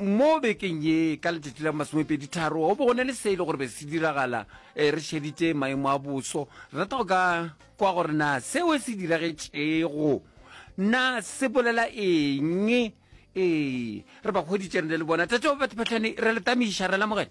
Mo bekeng ye, ka letšatši la masomepeditharo, go be go na le se e le gore be se diragala. E, re šeditše maemo a boso. Re rata go ka kwa gore na seo se diragetšego na se bolela eng. Ee, re ba hweditše re na le bona. Tate wa batho phatlhane, re le tamiša, re lamogela.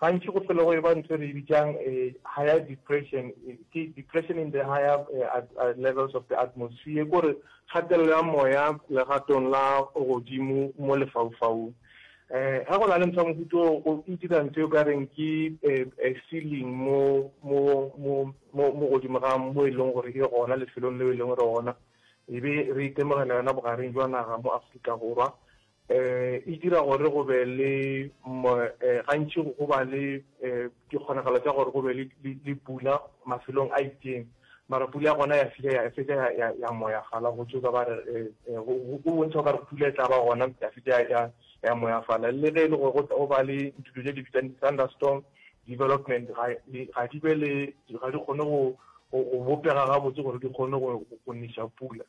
Gantši go tlhole go e ba ntho e re e bitšang higher depression, ke depression in the higher levels of the atmosphere, ke gore kgatelelo ya moya legatong la godimo mo lefaufaung. Eh, ha go na le ntho mofuta o e dira ntho e ka reng ke eh, eh, ceiling mo mo mo mo mo godimo ga mo e leng gore e gona lefelong leo e leng gore gona e be re itemogela yona bogareng jwa naga mo Afrika Borwa eh, e dira gore go be le eh, gantši go ba le eh, dikgonagalo tsa gore go be le pula mafelong a itseng mara pula ya gona ya file ya fetsa ya ya moya fala go tsoka ba re eh, eh, go bontsha ka re pula e tla ba gona ya fetsa ya ya moya fala le ge e le gore go ba le ditulo tse di bitsang thunderstorm development ga di be le ga di kgone go bopega gabotse gore di kgone go nisa pula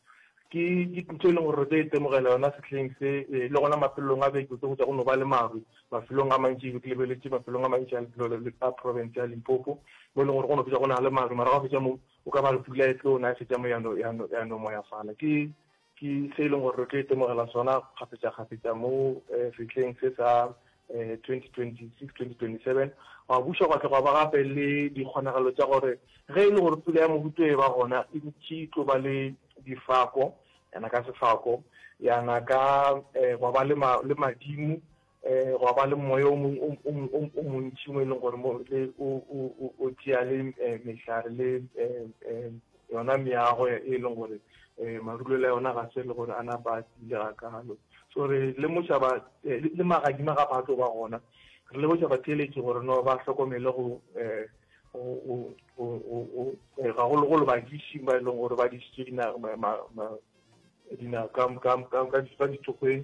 Ke diputso e leng gore re tlo e temogela yona sehleng se, le gona mafelelong a beke o tlo hwetša go no ba le maru mafelong a mantši. E be ke lebeletše mafelong a mantši a lefelo a profense ya Limpopo, mo e leng gore go no fetša go na le maru. Mara ga go fetša moo, go ka ba le pula e tlo na, e fetša moo ya no, ya no, ya no moyafala. Ke, ke se e leng gore re tlo e temogela sona kgafetša-kgafetša mo sehleng se sa 2026-2027 gwa buša gwa tla gwa ba gape le dikgonagalo tša gore ge e le gore pula ya mohuto e ba gona e ntši e tlo ba le difako yana ka sefako yana ka eh, gwa ba le madimo eh, gwa ba le moya o montši mo e leng gore o tšea le eh, mehlare le Yona meago e e leng gore um marulelo a yona ga se le gore a napa a tiile ga kalo. So re lemoša ba eh, le magadima ga ba tlo ba gona re lemoša batheeletši gore no ba hlokomele go um eh, gagologolo badišing ba e leng gore ba dišitše dina ka ditokgweng